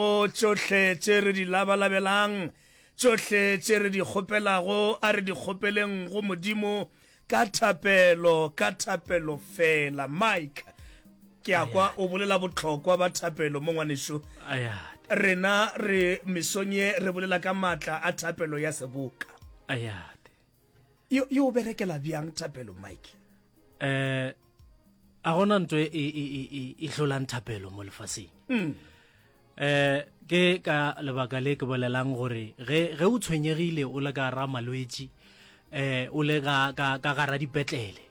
go tšohle tše re di labalabelang, tšohle tše re di kgopelago, a re di kgopeleng go Modimo ka thapelo, ka thapelo feela. Mike, ke a kwa o bolela bohlokwa ba thapelo mo, ngwanešu. Rena re mesong ye re bolela ka matla a thapelo ya seboka. yo yo berekela bjang thapelo mike eh a gona ntwe e e e e, e hlolang thapelo mo lefaseng mm. eh ke ka lebaka le ke bolelang gore ge ge o tshwenyegile o le ka ra malwetsi eh o le ka ka ka gara dipetlele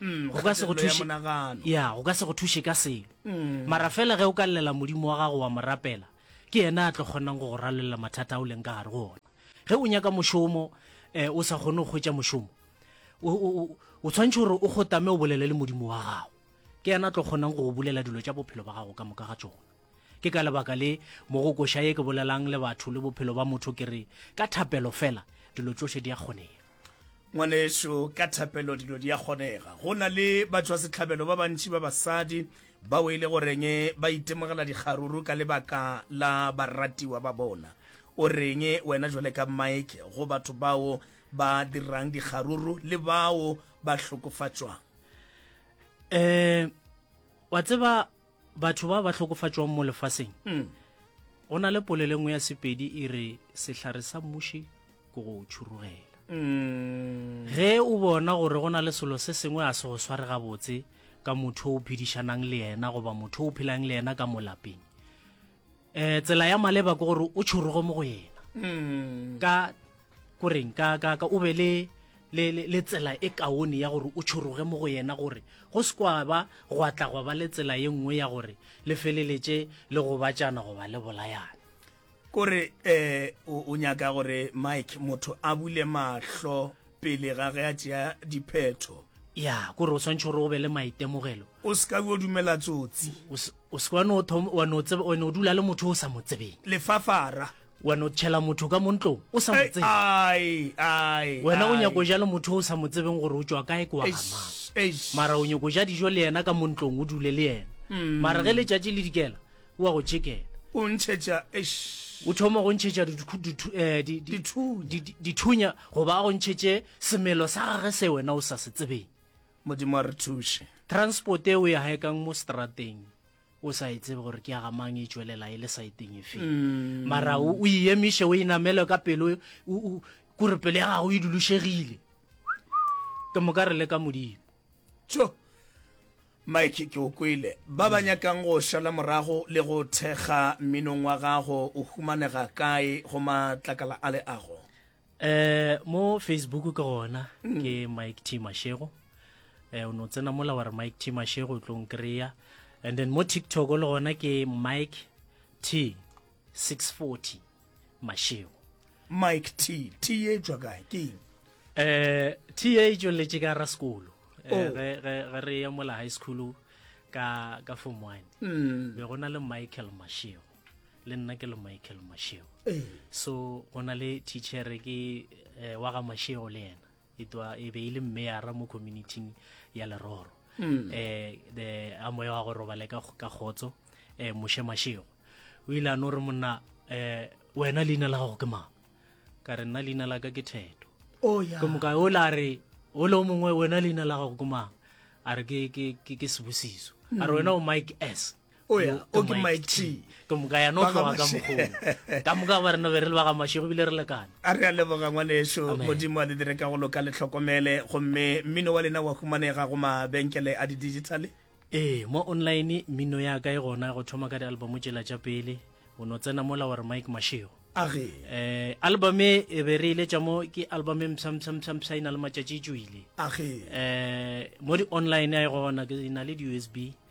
Mm, go ka se go kgatelelo ya thuše monagano. ya go ka se go thuše ka selo Mm. mara fela ge o ka llela modimo wa gago wa mo rapela ke yena a tlo kgonang go go ralolela mathata a o leng ka gare go ona ge o nyaka mošomo um o sa kgone go hwetša mošomo o- o o- o tshwanetse gore o kgotame o bolele le modimo wa gago ke yena a tlo kgonang go go bulela dilo tša bophelo ba gago ka moka ga tsona Ke ka lebaka le, mo go koša ye ke bolelang le batho le bophelo ba motho ke re, ka thapelo fela, dilo tšohle di a kgonega. Ngwanešu, ka thapelo dilo di a kgonega. Go na le batšwasehlabelo ba bantši ba basadi bao e le goreng ba itemogela dikgaruru ka lebaka la baratiwa ba bona. O reng wena bjale ka Mike go batho bao ba dirang dikgaruru le bao ba hlokofatšwang? Ee, wa tseba, batho ba ba hlokofatšwang mo lefaseng mm. go na le polelo nngwe ya sepedi e re sehlare sa mmuši ke go tšhurugela mm. ge o bona gore go na le selo se sengwe a se go sware gabotse ka motho o phedišanang le yena goba motho o phelang le yena ka molapeng um tsela ya maleba ke gore o tšhorogo mo go yena mm. ka koreng ka ka ka o be le le le tsela e kaone ya gore o tšhoroge mo go yena gore go se kwa ba go atla go ba le tsela ye nngwe ya gore le feleletše le go batšana go ba le bolayana kore eh o nyaka gore mike motho a bule mahlo pele ga ge a tšea diphetho ya kore o tshwanetse gore o be le maitemogelo o se ka o dumela tsotsi o se wa no thom wa no tsebe o no dula le motho o sa mo tsebeng lefafara wa no tshela motho ka montlo o sa mo tsebe ai ai wena o nyako ja le motho o sa mo tsebeng gore o tswa kae kwa mara o nyako ja dijo le yena ka montlong o dule le yena mm. mara ge le tšatši le dikela o a go tšhekela o ntšhetša o thoma go ntšhetša eh, dithunya goba a go ntšhetše semelo sa gage se wena o sa se tsebeng modimo a re thuše transport e o ya haekang mo strateng o sa e tsebe gore ke ya gamang e tswelela e le saeteng efe mm. mara o e emiše o e namele ka pelo kore pelo ya gago e dulušegile ke moka re le ka modimo Mike, ke o kwele. Ba ba nyakang go šala morago le go thekga mminong wa gago o humanega kae go matlakala a leago? Um mo Facebook ke gona mm. ke Mike T Mashego um o no tsena mola wa re Mike T Mashego o tlo nkry-a and then mo TikTok le gona ke Mike T 640 mašego mike t t e tšwa kae ke eng um t e tšweletše ka ra sekolo eh, oh. ge re ya mola high school ka ka form one mm. be go na le michael mashego le nna ke le michael mashego eh. so go na le teachere ke eh, wa ga mashego le yena e twa e be e le mmeara mo communityng ya leroro um the a moya wa go robale ka kgotso um moshe mashego o ile a no re monna um wena leina la gago ke mang ka re nna leina la ka ke theto oh, ke moka o la re o le o mongwe wena leina la gago ke mang a re ke sebusiso a re wena o mike s o ya o ke my tea ke moka ya no tloga ka mogolo ka moka ba rena be re le ba ga mashego bile re lekane a re a leboga ngwaneso modimo a le dire ka go loka le tlhokomele gomme mmino wa lena wa humanega go mabenkele a di-digitale ee mo online mmino ya ka e gona go thoma ka di-album tšela tša pele o no tsena mola wa re mike mashego age eh album e, e be re ile tša mo ke album e msam sam sam sa ina le matšatši tšwile age eh mo di online a e gona ke ina le di-usb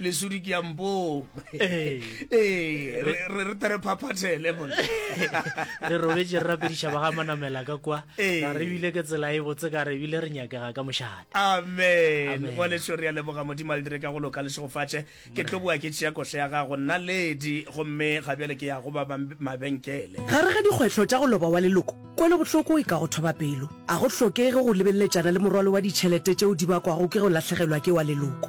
lesudi ke ya mpong ee ee re re- re tere phaphathele mona re robetse re rapediša ba ga manamela ka kwa Ee. ga re bile ke tsela e botse ka re bile re nyakega ka mošate amen Amen. bone šo re a leboga modimo a le dire ka go loka le segofatše ke tlo boa ke tšea koša ya gago nna ledi gomme ga bjale ke ya go ba bam- mabenkele gare ga dikgwetlho tša go loba wa leloko kwelobohloko e ka go thoba pelo a go hlokege go lebeleletšana le morwalo wa ditšhelete tšeo di bakwago ke go lahlegelwa ke wa leloko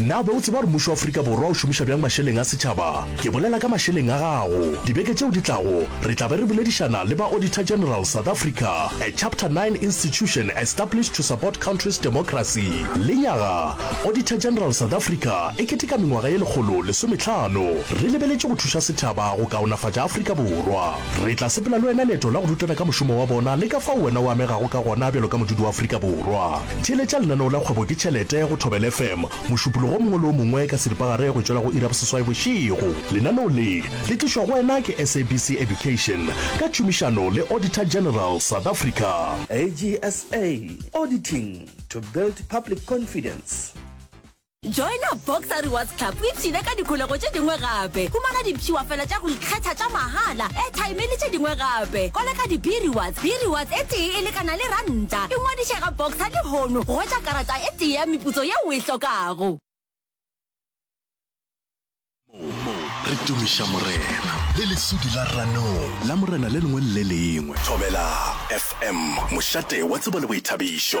Na o be o tseba gore mmušo wa Afrika Borwa o šomiša bjang mašeleng a setšhaba? Ke bolela ka mašeleng a gago. Dibeke tšeo di tlago, re tla be re boledišana le ba Auditor General South Africa, a Chapter 9 institution established to support country's democracy. Lenyaga, Auditor General South Africa e keteka mengwaga ye lekgolo lesometlhano. Re lebeletše go thuša setšhaba go kaonafatša Afrika Borwa. Re tla sepela le wena leeto la go rutana ka mošomo wa bona le ka fao wena o amegago ka gona bjalo ka modudi wa Afrika Borwa. Theeletša lenaneo la Kgwebo ke Tšhelete go Thobela FM mošupologo o mongwe le o mongwe ka seripagare go tšwela go iri ya boseswai bošego. Lenaneo le, le tlišwa go wena ke SABC Education ka tšhomišano le Auditor General South Africa. AGSA, Auditing to build public confidence. Joina Boxer Rewards Club o ipshine ka dikholego tše dingwe gape. Humana dipshiwafela tša go ikgetha tša mahala, airtime le tše dingwe gape. Koleka di-B-Rewards, B-Rewards e tee e lekana le ranta. Ingwadiše ga Boxer lehono go hwetša karata e tee ya meputso yeo o e hlokago. Mo re tumiša Morena le lesudi la ranong la Morena le lengwe le le lengwe. Thobela FM, mošate wa tsebo le boithabišo.